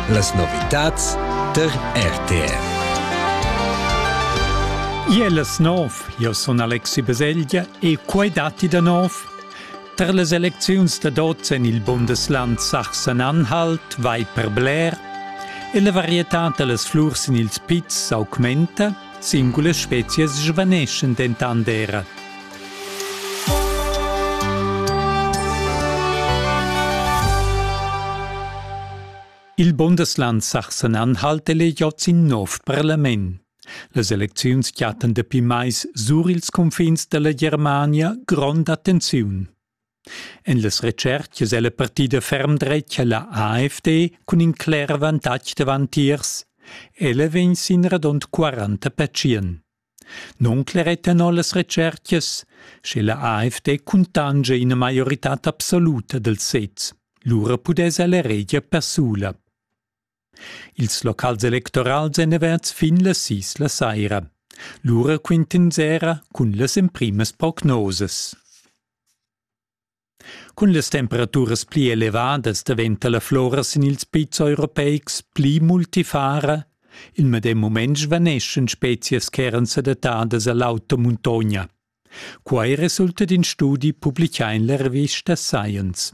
Las novitads tar RTR. Iel es nov, io sun Alexi Baselgia e quai datti da nov. Tar las elecziuns da dots en il Bundesland Sachsen-Anhalt vai per bler e la varietà da las flurs sin ils pizs s'augmenta Singulas spezias svaneschan dentant era. Il Bundesland Sachsen-Anhalt elegiots in nov parlament. Las elecziuns chattan dapi mais sur ils confins dalla Germania gronda tensiun. En las retschertgas è la partida ferm dretga la AFD cun in cler avantatg davantiers. Ella vegn sin radund 40 pertschien. Non cleretano las retschertgas, sche la AFD cuntange ina maioritad absoluta del sez. Lura pudess ella regia persula. Ils locals electorals èn averts fin las sis la saira. Lura quintin sera cun las emprimas prognosas. Cun las temperaturas pli elevadas daventa la flora sin ils pizs europeics pli multifara. Il medem mument svaneschan spezias ch'eran sedattadas a l'auta muntogna. Quai resulta d'in studi publichà en la revista Science.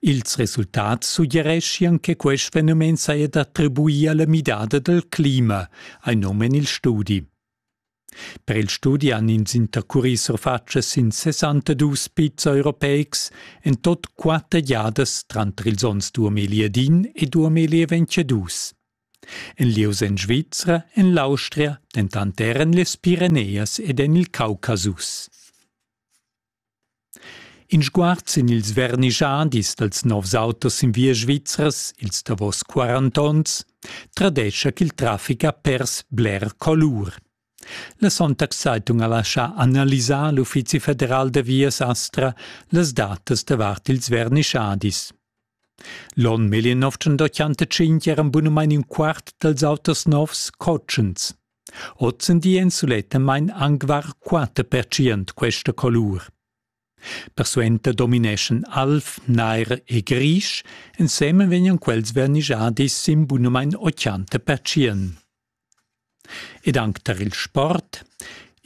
Ils resultats suggereschian che quest fenomen saja d'attribuir a la midada dal clima, hai num en il studi. Per il studi han ins intercurì surfatschas sin 62 pizza europeics en tot quatter giadas tranter ils onns 2001 e 2022. En lieus en Svizra, en l'Austria, dentant er en las Pireneias ed en il Caucasus. In sguard sin ils vernischadis dals novs autos in via svizras, ils davos 40 onns, tradescha ch'il traffic ha pers bler colur. La Sonntagszeitung ha laschà analisar l'Uffizi federal da vias Astra las datas davart ils vernischadis. L'onn 1985 eran bunamain in quart dals autos novs cotschens. Ozendi èn sulettamain anc var quatter percent questa colur. Persuenter domineschan alv, nair e grisch, ensemen vegnan quels vernischadis sin bunamain 80 percent. Ed anc tar il sport.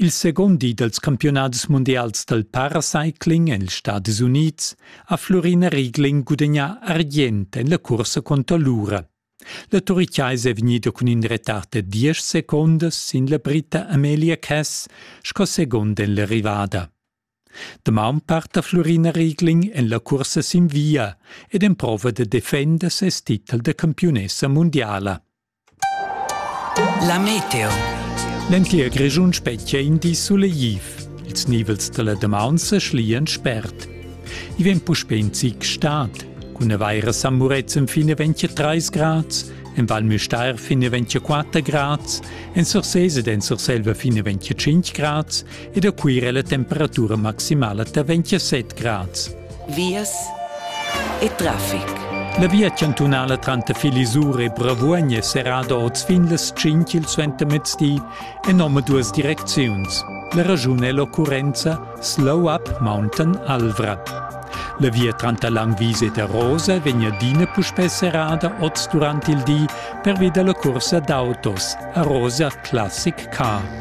Il secund di dals campiunadis mundials dal paracycling en ils Stadis Unids ha Flurina Riegling gudagnà argient en la cursa cunter l'ura. La turichaisa è vegnida cun in retard da diesch secondas sin la Brita Amelia Cass sco segund en l'arrivada. Damaun parta Flurina Riegling en la cursa sin via ed emprova da defender ses titel da campiunessa mundiala. La meteo. L'entir Grischun spetgia in di sulegliv. Ils nivels dalla damaun sa schlian spert. I vegn puspè in zic stad. Cun avaira San Murezzan fin a 23 grads, en Val Müstair fin a 24 grads, en Sursese ed en Surselva fin a 25 grads e da Cuira la temperatura maximala da 27 grads. Vias e traffic. La via chantunala tranter Filisur e Bravuogn è serrada oz fin las 5 il suentermezdi en omaduas direcziuns. La ragiun è l'occurrenza Slow Up Mountain Alvra. La via tranter Langwies ed Arosa vegn adina puspè serrada oz durant il di pervi da la cursa d'autos Arosa Classic Car.